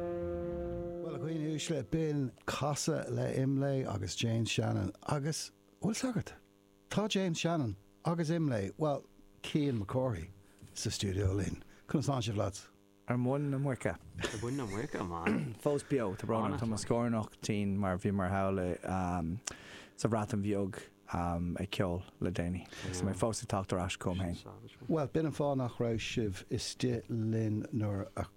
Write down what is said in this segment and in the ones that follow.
Bhuel, a dhaoine uaisle, b'in casadh le Imlé agus James Shannon. Agus, bhuel, sagart, tá James Shannon agus Imlé, bhuel, Cian Mac Cárthaigh, sa stiúideo linn. Conas tánn sibh, lads? Ar mhuin na muice. Ar mhuin na muice, man. Fós beo, tá brón orm, tá mo scornach tinn mar bhíomar thall i, sa Bhreatain Bheag ag ceol le déanaí. Agus tá mé fós ag teacht ar ais chugam féin. Bhuel, b'in an fáth nach raibh sibh istigh linn nuair a.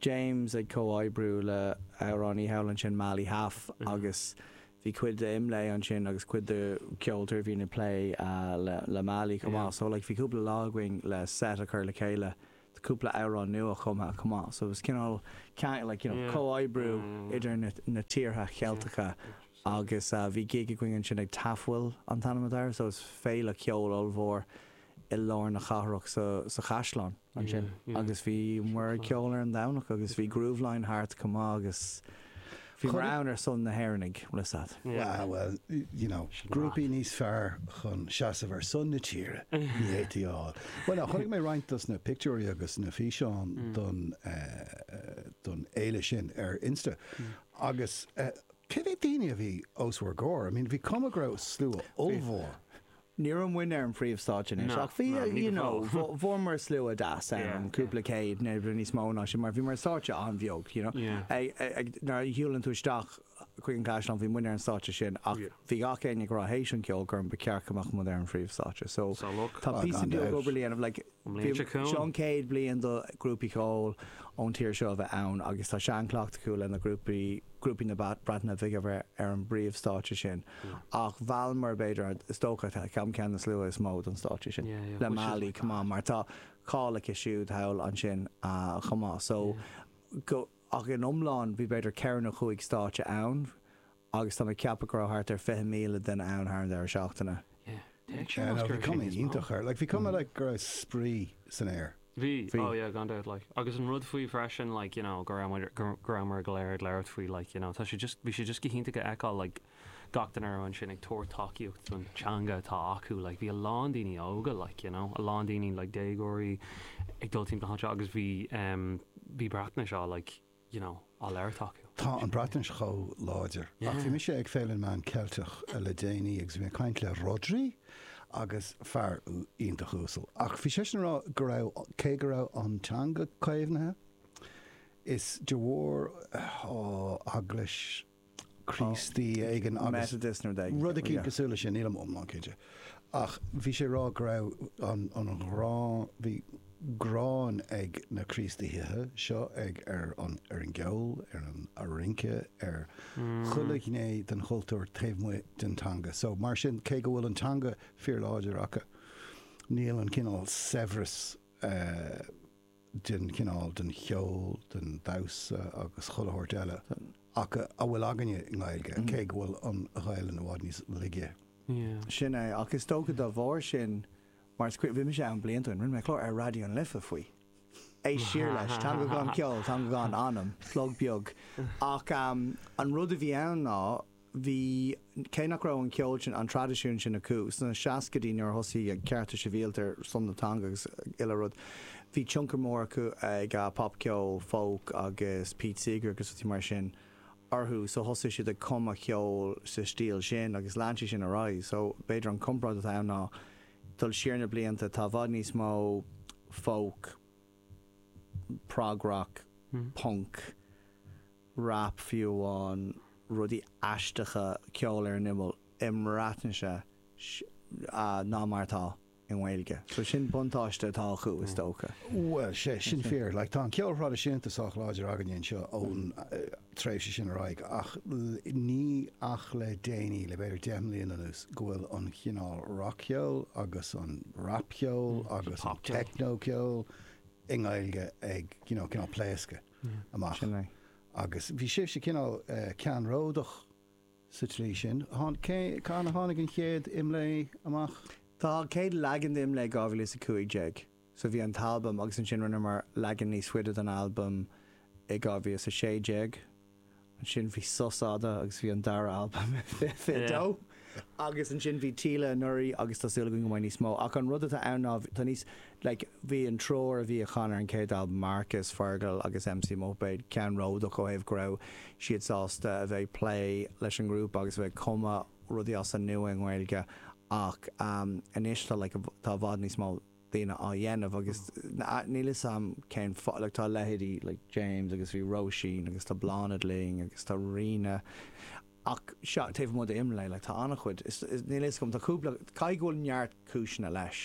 James ag comhoibriú le amhránaí thall ansin Mali Haf agus bhí cuid de Imlé ansin agus cuid de ceoltóirí a bhíonn ag plé le Mali chomh maith so like bhí cúpla lá againn le set a chur le chéile de cúpla amhrán nua chumtha chomh maith so it was cineál ceangal like you know comhoibriú idir na na tíortha Cheilteacha agus bhí gig againn ansin ag Tafwyl an t-ainm atá air so is féile ceoil ollmhór i lár na cathrach so sa chaisleán. ansin agus bhí muid ag ceol ar an Domhnach agus bhí Grooveline thart chomh maith agus bhíomar ann ar son na hÉireannaigh, Rissat. Wow, well, you know, grúpaí níos fearr chun seasamh ar son na tíre ní fhéadfaí a fháil. Bhuel, chonaic mé roinnt dos na pictiúirí agus na físeáin don, don fhéile sin ar Insta agus cé mhéad daoine a bhí os bhur gcomhair? I mean, bhí cuma go raibh slua ollmhór. Ní raibh muinn ar an phríomhstáitse anois, ach bhí, you know, fuaireamar slua deas ann, cúpla céad, nó níos mó ná sin, mar bhíomar ar stáitse an-bheag, you know. Nuair a shiúlann tú isteach chuig an gcaisleán, bhí muinn ar an stáitse sin, ach bhí gach éinne ag rá théis an cheoil gur ba cheart go mbeadh muid ar an phríomhstáitse. So tá píosa beag obair le déanamh, like. An bhliain seo chugainn. Seo an chéad bliain do ghrúpaí ceoil ón tír seo a bheith ann agus tá seanchleachtadh acu le na grúpaí grúpaí na Breataine Bige a bheith ar an bpríomhstáitse sin ach mheallamar b'fhéidir an is dócha ceann ceann de na slua is mó don stáitse sin le Mali chomh maith mar tá cáil aici siúd thall ansin chomh maith so go Ach in iomlán bhí b'fhéidir ceithre nó cúig stáitse ann agus táim ag ceapadh go raibh thart ar 20,000 duine ann thar an deireadh seachtaine. Yeah no bhí cuma iontach air, like bhí cuma like go raibh spraoi san aer. Bhí, oh yeah gan dabht like agus an rud faoi freisin like you know go raibh muid, go raibheamar go léir ag labhairt faoi like you know tá sé just, bhí sé just go hiontach a fheiceáil like, gach duine thart ansin ag tabhairt tacaíocht don teanga atá acu like bhí a lán daoine óga like you know a lán daoine like déagóirí ag dul timpeall achan treo agus bhí em bhí Breatnais á like you know á labhairt acu. Tá an Bhreatnais chomh láidir ach bhí yeah. mise ag Féile na Meán Ceilteach le déanaí agus bhí mé ag caint le Rhodri agus fear iontach uasal ach bhí seisean ag rá go raibh cé go raibh an teanga caomhnaithe is de bharr an Eaglais Críostaí éigin agus rud éicínt cosúil le sin, nílim iomlán cinnte. Ach bhí sé ag rá go raibh an ghráin, bhí gráin ag na Críostaithe seo ag ar an ar an gceol, ar an rince, ar chuile ghné den chultúr taobh amuigh den teanga. So mar sin, cé go bhfuil an teanga fíorláidir acu, níl an cineál saibhreas eh, den chineál, den cheol, den damhsa agus chuile shórt eile atá, a bhfuil againne i nGaeilge, cé go bhfuil an Ghaelainn i bhfad níos laige. Yeah. Sin é, ach is dócha dá bharr sin, mar is cuimhin, bhí mise ann blianta ó shin, rinne mé clár ar Raidió na Life faoi. Éist siar leis, Teanga Gan Cheol, Teanga Gan Anam, plug beag. Ach an rud a bhí ann ná, bhí, cé nach raibh an ceol sin, an traidisiún sin acu sna seascaidí nuair a thosaigh na cearta sibhialta ar son na teanga agus chuile rud, bhí tionchar mór ag, ag popcheol, folk agus Pete Seeger agus rudaí mar sin orthu so thosaigh siad ag cumadh ceol sa stíl sin agus lean sé sin ar aghaidh so b'fhéidir an comparáid atá ann ná dul siar na blianta tá i bhfad níos mó folk, prog rock, punk. rap fiú amháin, rudaí aisteacha, ceol ar an imeall, i mBreatnais ná mar atá i nGaeilge. So sin buntáiste atá acu is dócha. Bhuel, sé sin fíor. Like, tá an ceol thraidisiúnta sách láidir againne anseo ón tréimhse sin ar aghaidh, ach níl ach le déanaí, le b'fhéidir deich mbliana anuas, go bhfuil an chineál rac-cheoil agus an rap-cheol agus an techno-ceol i nGaeilge ag, you know, cineál pléascadh. amach. Agus bhí sibhse cineál ceannródach sa tslí sin. Cathain a tháinig an chéad IMLÉ amach? Tá, an chéad leagan de IMLÉ 2015. So bhí an t-albam agus ansin rinneamar leagan níos faide den albam i 2016. ansin bhí sos fhada agus bhí an dara albam fiche dó agus ansin bhí Fáilte anuraidh agus tá súil againn go mbeidh níos mó ach an rud atá ann ná tá níos like bhí an triúr a bhí a chan ar an chéad albam Marcus, Fergal agus MC Muipéad ceannródach ó thaobh go raibh siad sásta a bheith ag plé leis an ngrúpa agus a bheith ag cumadh rudaí as an nua i nGaeilge ach anois tá like tá i bhfad níos mó daoine á dhéanamh agus níl 'fhios a'm cén fáth, like tá leithéidí like James agus bhí Róisín agus tá Bláthnaid linn agus tá Ríona ach sea, taobh amuigh d'IMLÉ like tá an-chuid, is níl 'fhios a'm, tá cúpla, caithfidh go bhfuil neart cúiseanna leis.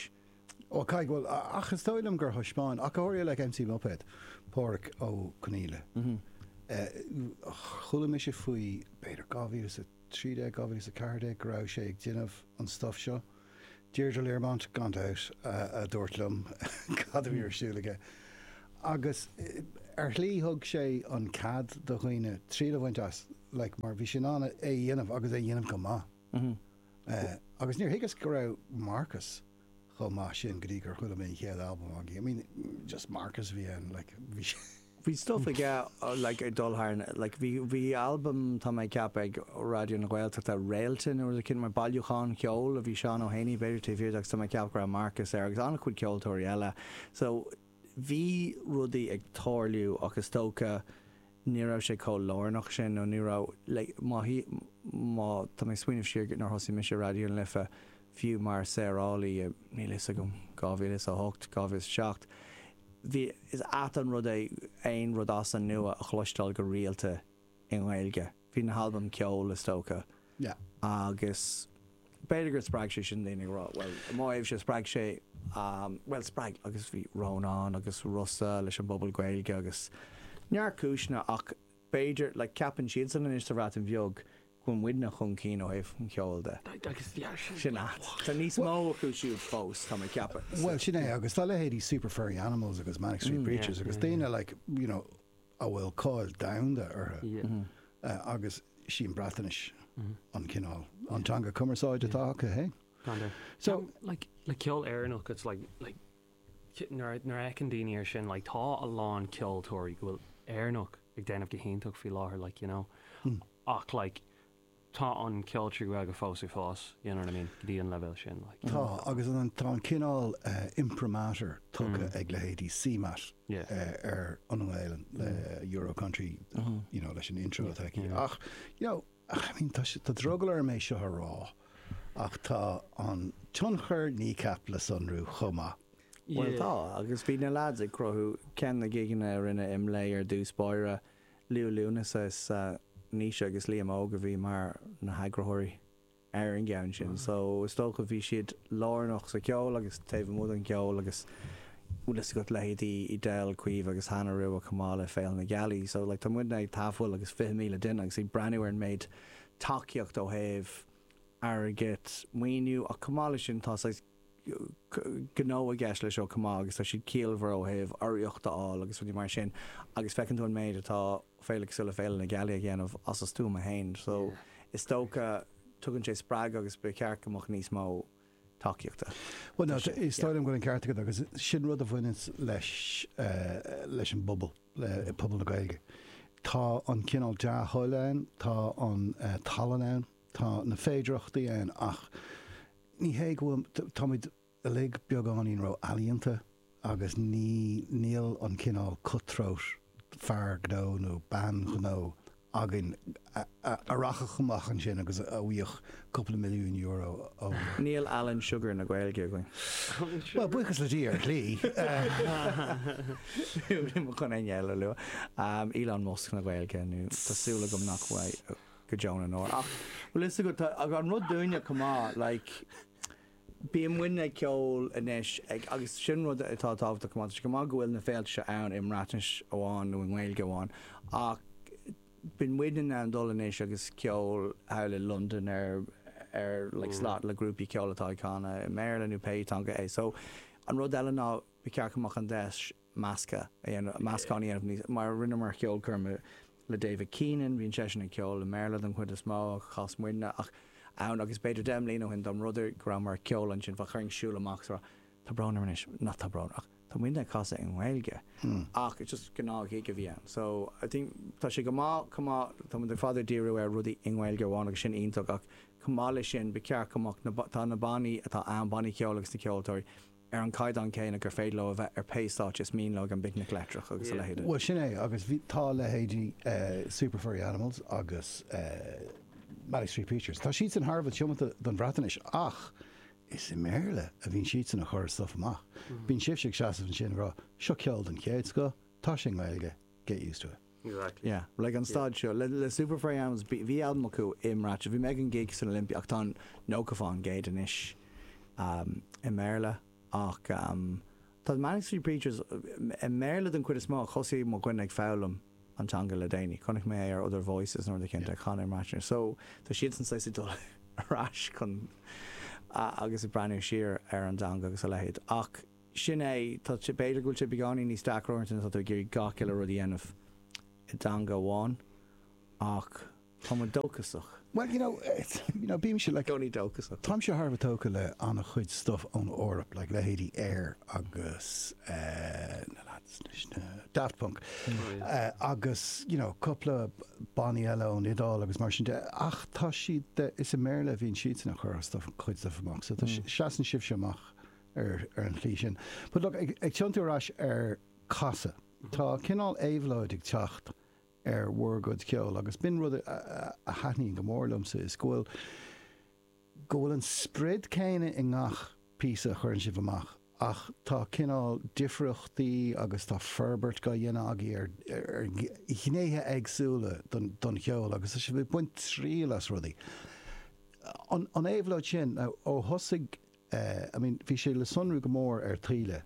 Ó caithfidh go bhfuil, ach is dóigh liom gur thaispeáin ach go háirithe like MC Muipéad, Pádraig Ó Conghaile, chuala mise faoi b'fhéidir 2013, 2014 go raibh sé ag déanamh an stuff seo. Deirdre Learmont, gan dabht, a dúirt liom cad a bhí ar siúl aige. Agus ar shlí thug sé an cead do dhaoine triail a bhaint as, like, mar bhí sé in ann é a dhéanamh agus é a dhéanamh go maith. Agus níor thuigeas go raibh Marcus chomh maith sin go dtí gur chuala mé an chéad albam againn. I mean, just Marcus a bhí ann, like, bhí sé. bhí stuff ag like ag dul thar na like bhí bhí albam tá mé ag ceapadh ag Raidió na Gaeltachta Réalta nó rud eicínt mar bailiúchán ceoil a bhí Seán Ó hÉanaí b'fhéidir taobh thiar de agus tá mé ag ceapadh go raibh Marcus air agus an-chuid ceoltóirí eile so bhí rudaí ag tarlú ach is dócha ní raibh sé chomh lárnach sin nó ní raibh like má tá mé ag smaoineamh siar go nuair a thosaigh mise i Raidió na Life fiú mar saorálaí i níl a fhios agam 2008 2007 Bhí, is ait an rud é aon rud as an nua a chloisteáil go rialta i nGaeilge. Bhí na halbaim ceoil, is dócha. Agus b'fhéidir gur spreag sé sin daoine ag rá, bhuel, i mo thaobhse, spreag sé, bhuel, spreag, agus bhí Rónán agus Rossa leis an bpobal Gaeilge agus neart cúiseanna ach b'fhéidir, like, ceapann siadsan anois sa Bhreatain Bheag bhfuil muidne chun cinn ó thaobh an cheoil de. Sin a. Tá níos mó acu siúd fós, táim ag ceapadh. Bhuel, sin é, agus tá leithéidí Super Furry Animals agus Manic Street Preachers agus daoine like, you know, a bhfuil cáil domhanda orthu agus sí an Bhreatainis an cineál, an teanga cumarsáide atá acu, hey? So, like, le ceol Éireannach, it's like, like. nuair a fheiceann daoine ar sin like tá a lán ceoltóirí go bhfuil Éireannach ag déanamh go hiontach faoi láthair like you know ach like tá an ceol trí Ghaeilge fós ag fás you know what I mean go dtí an leibhéal sin like tá agus tá an cineál imprimatur tugtha ag leithéidí CMAT ar an nGaeilinn le Euro Country you know leis an intro atá aici ach you know I mean tá sé tá drogall orm é seo a rá Ach tá an tionchar Kneecap le sonrú chomh maith. Bhuel, tá, agus bhí na leaids ag cruthú ceann de na gigeanna a rinne Imlé ar dtús báire, Liú Lúnasa is ea Naoise agus Liam Óg a bhí mar na heagraitheoirí ar an gceann sin, so is dócha bhí siad lárnach sa cheol agus taobh amuigh den cheol agus bhfuil fhios agat leithéidí Edel, Caoimhe agus Hannah Rua chomh maith le Féile na Gealaí, so like tá muidne ag tabhairt amach agus fiche míle duine agus ag breathnú ar an méid tacaíocht ó thaobh airgid, maoiniú, ach chomh maith leis sin tá saghas gnó i gceist leis seo chomh maith agus tá siad ciallmhar ó thaobh urraíocht a fháil agus rudaí mar sin agus feiceann tú an méid atá féile cosúil le Féile na Gealaí a dhéanamh as a stuama fhéin so is dócha tugann sé spreagadh agus ba cheart go mbeadh níos mó tacaíochta. Bhuel, Tá sé, is yeah. dóigh liom go bhfuil an ceart agat agus sin rud a bhaineanns leis eh, leis an bpobal, le i pobal na Gaeilge. Tá an cineál dea-thoil ann, tá an eh, tallann ann, tá na féidireachtaí ann ach ní hé go bhfuil, t- táimid uilig beagáinín ró-ealaíonta agus ní níl an cineál cut-throat fear gnó nó bean ghnó againn a rachfadh amach ansin agus a bhuafadh cúpla milliún euro ó. Níl Alan Sugar na Gaeilge againn. Bhuel, buíochas le Dia, ar shlí. chun éinne eile a lua. Elon Musk na Gaeilge nó tá súil agam nach bhfuil go deo na ndeor. Ach bhfuil fhios agat, tá an rud dúinne chomh maith, like, Bíonn muidne ag ceol anois ag agus sin rud atá tábhachtach go maith. Tá sé go maith go bhfuil na féilte seo ann i mBreatnais amháin nó i nGaeilge amháin ach bíonn muidne in ann dul anois agus ceol thall i Londain ar ar like slot le grúpaí ceoil atá ag canadh i mBéarla nó pé teanga é. So an rud eile ná ba cheart go mbeadh an deis measctha a dhéanamh, meascán a dhéanamh níos, mar rinne muid ceolchoirm le David Keenan, bíonn seisean ag ceol i mBéarla den chuid is mó, ach chas muidne, ach ann agus b'fhéidir deich mbliana ó shin dá mba rud é go rabhamar ag ceol ansin, bheadh orainn siúl amach agus a rá tá brón orm anois, nach tá brón ach tá muidne ag casadh i nGaeilge ach just gnáth-ghig a bhí ann so I think tá sé go maith chomh maith, tá muid ar fad ag díriú ar rudaí i nGaeilge amháin agus tá sin iontach ach chomh maith leis sin ba cheart go mbeadh na tá na bannaí atá ann, bannaí ceoil agus na ceoltóirí, ar an gcaighdeán céanna gur féidir leo a bheith ar pé stáitse is mian leo ag an bPicnic Leictreach agus a leithéide. Bhuel, sin é, agus bhí, tá leithéidí Super Furry Animals agus Manic Street Preachers, tá siadsan thar a bheith tiomanta don Bhreatnais ach is i mBéarla a bhíonn siadsan ag cur a stuif amach. Bíonn sibhse ag seasamh ansin ag rá, seo ceol den chéad scoth, tá sé i nGaeilge, get used to it. Exactly. Yeah. Like an staid seo le Super Furry Animals bhí albam acu i mBreatnais bhí mé ag an gig san Olympia ach tá an nócha faoin gcéad anois i mBéarla ach tá The Manic Street Preachers i mBéarla den chuid is mó ach thosaigh mo dhuine ag foghlaim an teanga le déanaí chonaic mé é ar Other Voices nó rud éicint ag canadh i mBreatnais so tá siadsan saghas ag dul ar ais chun agus ag breathnú siar ar an dteanga agus a leithéid ach Sin é, tá sé, b'fhéidir go bhfuil sé beagáinín níos deacra uaireanta nuair atá tú ag iarraidh gach uile rud a dhéanamh i dteanga amháin, ach tá muid dóchasach. Bhuel, you know, you know, bímse, like, i gcónaí dóchasach. táimse thar a bheith tógtha le an-chuid stuff ón Eoraip, like, leithéidí Air agus eh, na lads, anois, na Daft Punk, eh, agus, you know, cúpla bannaí eile ón Iodáil agus mar sin de, ach tá siad, eh, is i mBéarla a bhíonn siadsan a' cur stuff, cuid stuff amach, so tá, seasann sibhse amach ar an tslí sin. But look, ag tiontú ar ais ar casadh, tá cineál éabhlóid ag teacht ar bhur gcuid ceoil agus is rud a thaitníonn go mór liomsa, is go bhfuil, go bhfuil an sprid céanna i ngach píosa a chuireann sibh amach ach tá cineál difríochtaí agus tá forbairt á dhéanamh agaibh ar, ar ghnéithe éagsúla don, don cheol agus tá sibh ag baint triail as rudaí. An, an éabhlóid sin, ó thosaigh. Eh, I mean, bhí sé le sonrú go mór ar Taoille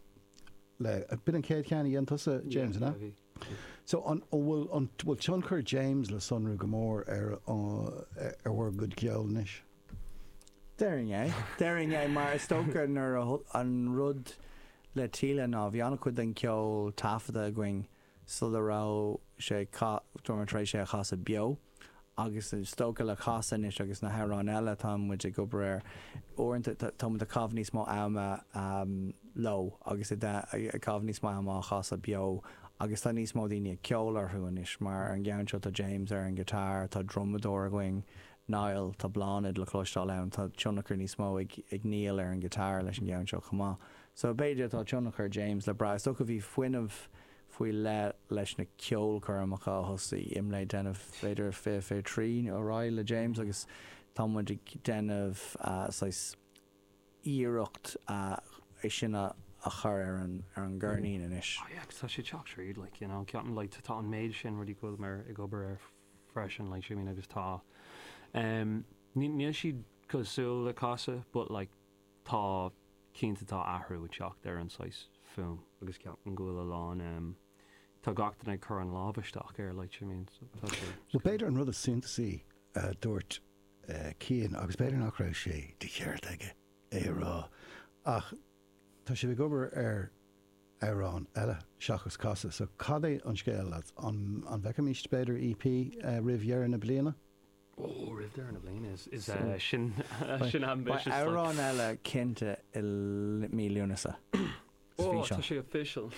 le, b'in an chéad cheann a dhein tusa, James, an ea? Yeah, bhí, bhí. So, an bhfuil, an bhfuil tionchar James le sonrú go mór ar an, ar bhur gcuid ceoil anois? Déarfainn é. Déarfainn é mar is dócha nuair a, an rud le Taoille ná bhí an-chuid den cheol taifeadta againn sula raibh sé ag casadh, dúramar tar éis é a chasadh beo, agus is dócha le Casadh anois agus na hamhráin eile atá muid ag obair air, uaireanta tá muid ag caitheamh níos mó ama leo agus ag caitheamh níos mó ama á chasadh beo agus tá níos mó daoine ag ceol orthu anois, mar ar an gceann seo tá James ar an guitar, tá drumadóir againn, Niall, tá Bláthnaid le cloisteáil ann, tá tionchar níos mó ag Niall ar an guitar leis an gceann seo chomh maith. So b'fhéidir tá tionchar James le brath, is dócha, bhí fuinneamh faoi leith leis na ceolchoirmeacha a thosaigh IMLÉ a déanamh, b'fhéidir fiche fiche trí nó ar aghaidh le James agus tá muid ag déanamh saghas iarracht é sin a chur ar an gceirnín anois. Oh yeah, agus tá sé ag teacht tríd, like, you know, ceapaim, like, tá an méid sin rudaí go bhfuil mé ag obair air freisin, like, see what I mean, agus tá, em, níl siad cosúil le Casadh but like, tá, cinnte tá athrú ag teacht ar an saghas fuaim. agus ceapaim go bhfuil a lán, tá gach duine ag cur an lámh isteach air like I mean tá sé Bhuel, b'fhéidir an rud is suntasaí a dúirt Cian, agus b'fhéidir nach raibh sé de cheart aige é a rá, ach tá sibh ag obair ar amhrán eile seachas Casadh, so cad é an scéal, lads? An bhfeicfimist b'fhéidir EP roimh dheireadh na bliana? Beidh amhrán eile cinnte i mí Lúnasa sa bhfíseán.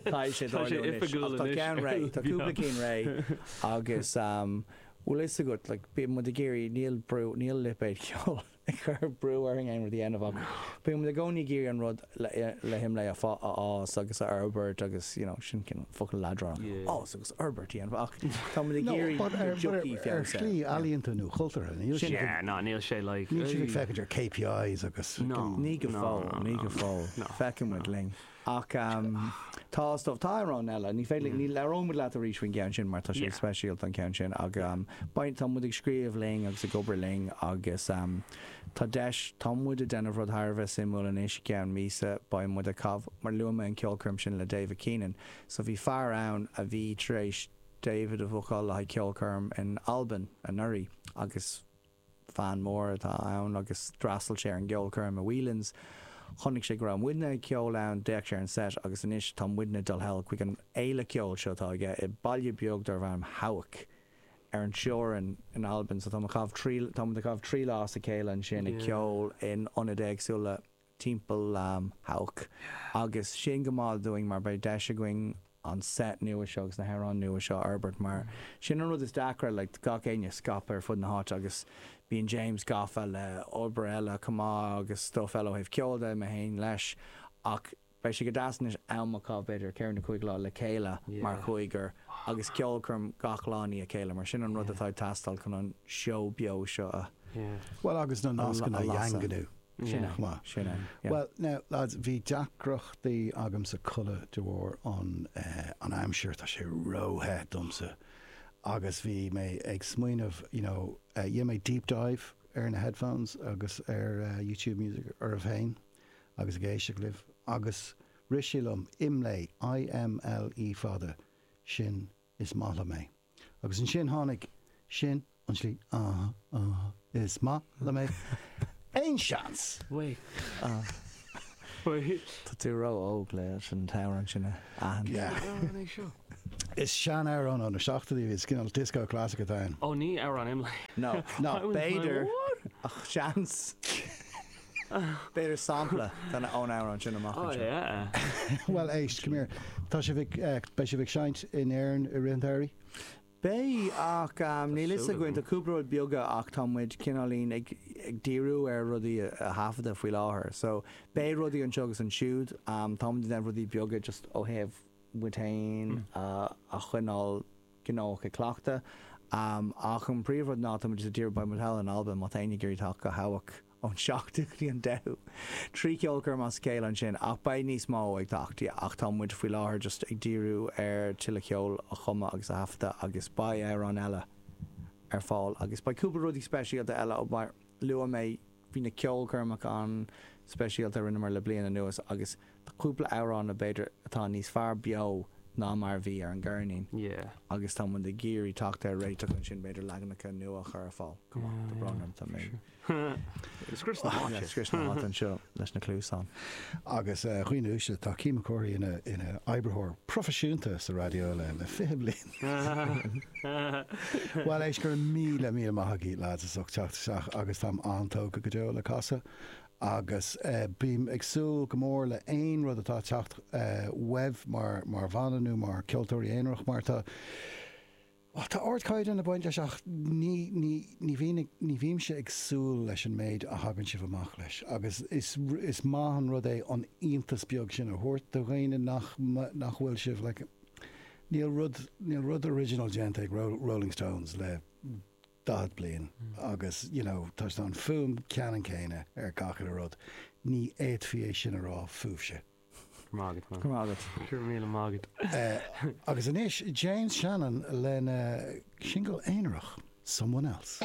Tá sé oifigiúil anois. Tá ceann réidh, tá cúpla ceann réidh agus bhfuil fhios agat, bíonn muid ag iarraidh, níl brú, níl lipéad ceoil, ag cur brú orainn aon rud a dhéanamh ach bímid i gcónaí ag iarraidh an rud le hIMLÉ a fhás agus a fhorbairt agus you know sin cineál focal leadránach fhás agus fhorbairt a dhéanamh ach táimid ag iarraidh go dtiocfaidh feabhas air. Ar shlí ealaíonta nó chultúrtha, níl siad ag, ná níl sé like, níl siad ag féachaint ar KPIs agus. Ní go fóill, ní go fóill, feicfidh muid linn. Ach tá, is dócha, tá amhráin eile. Ní féidir linn, ní labhróidh muid leat arís faoin gceann sin mar tá sé speisialta an ceann sin ach beidh, tá muid ag scríobh linn agus ag obair linn agus tá deis, tá muid ag déanamh rud thar a bheith suimiúil anois, i gceann míosa beidh muid ag caitheamh, mar luaigh mé an ceolchoirm sin le David Keenan so bhí fear ann a bhí tar éis David a bhookáil le haghaidh ceolchoirm in Albain anuraidh agus. Fan mór atá ann agus d'fhreastail sé ar an gceolchoirm i Whelan's. Chonaic sé go raibh muidne ag ceol ann, d'fhéach sé ar an seit agus anois tá muidne ag dul thall chuig an fhéile ceoil seo atá aige i baile beag darb ainm Hawick, ar an teorainn in Albain. So tá, tá muid ag caitheamh trí lá as a chéile ansin ag ceol in ionaid éagsúla. timpeall Hawick agus sin go maith dúinn mar beidh deis againn an set nua seo agus na hamhráin nua seo a fhorbairt mar sin an rud is deacra like tá gach éinne scaipthe ar fud na háite agus bíonn James gafa le obair eile chomh maith agus stuff eile ó thaobh ceoil de, mé féin leis ach beidh sé go deas anois am a chaitheamh b'fhéidir ceithre nó cúig lá le chéile mar chúigear agus ceolchoirm gach lá i ndiaidh a chéile mar sin an rud atá ag teastáil chun an seó beo seo agus na nascanna a dhaingniú. Sin é. Sin é. Bhuel, now, lads, bhí deacrachtaí agamsa codladh de bharr an aimsir, tá sé ró-the domsa agus bhí mé ag smaoineamh, you know, rinne mé deep dive ar na headphones agus ar YouTube Music oraibh féin agus ag éisteacht libh agus rith sé liom, Imlé, I-M-L-E fada, sin is maith liom é. Agus ansin tháinig, sin an slí, ah, ah, is maith liom é. Aon seans? Tá tú ró óg leis an amhrán sin a aithint. Is seanamhrán ó na seachtóidí is cineál disco classic atá ann. Ó ní amhrán Imlé. No, no, b'fhéidir ach seans. B'fhéidir sampla ón amhrán sin amach anseo. Bhuel éist, come here, tá sibh ag, beidh sibh ag seinnt in Éirinn i rith an tsamhraidh? Beidh, ach níl a fhios againn, tá cúpla rud beaga ach tá muid cineáilín ag díriú ar rudaí a thaifeadadh faoi láthair. So, beidh rudaí anseo agus ansiúd, tá muid ag déanamh rudaí beaga just ó thaobh muid féin a choinneáil gnóthach ag cleachtadh. Ach an príomhrud ná tá muid just ag díriú, beidh muid thall in Albain, má tá éinne ag iarraidh teacht go Hawick! ón seachtú go dtí an deichiú. Trí cheolchoirm as a chéile ansin, ach beidh níos mó ag teacht, yeah. Ach tá muid faoi láthair just ag díriú ar tuilleadh ceoil a chumadh agus a thaifeadadh agus beidh amhráin eile ar fáil agus beidh cúpla rudaí speisialta eile ó mar luaigh mé bhí na ceolchoirmeacha an-speisialta a rinneamar le bliain anuas agus tá cúpla amhrán b'fhéidir atá níos fearr beo ná mar a bhí ar an gceirnín yeah. Agus tá muid ag iarraidh teacht ar réiteach ansin b'fhéidir leaganacha nua a chur ar fáil, chomh maith, tá brón orm, tá mé ag. Ag scrios na háite. Ag scrios na háite anseo leis na cluasáin. Agus dhaoine uaisle, tá Cian Mac Cárthaigh ina oibritheoir proifisiúnta sa raidió le fiche bliain. Bhuel, éist, go raibh míle, míle maith agaibh, lads, as ucht teacht isteach agus táim an-tógtha go deo le casadh agus bím ag súil go mór le aon rud atá ag teacht uaibh mar bhanna nó mar ceoltóirí aonarach mar tá Bhuel, tá ardchaighdeán ag baint leis ach ní, ní, ní bhíonn, ní bhímse ag súil leis an méid a thagann sibh amach leis agus is, is maith an rud é an t-iontas beag sin a thabhairt do dhaoine nach, nach bhfuil sibh, like, níl rud, níl rud original déanta ag Rolling Stones le daichead bliain agus, you know, tá an fuaim ceannann céanna ar gach uile rud, ní fhéadfaí é sin a rá fúibhse. Go raibh maith agat. Go raibh míle maith agat. Agus anois James Shannon lena shingil aonarach, Someone Else.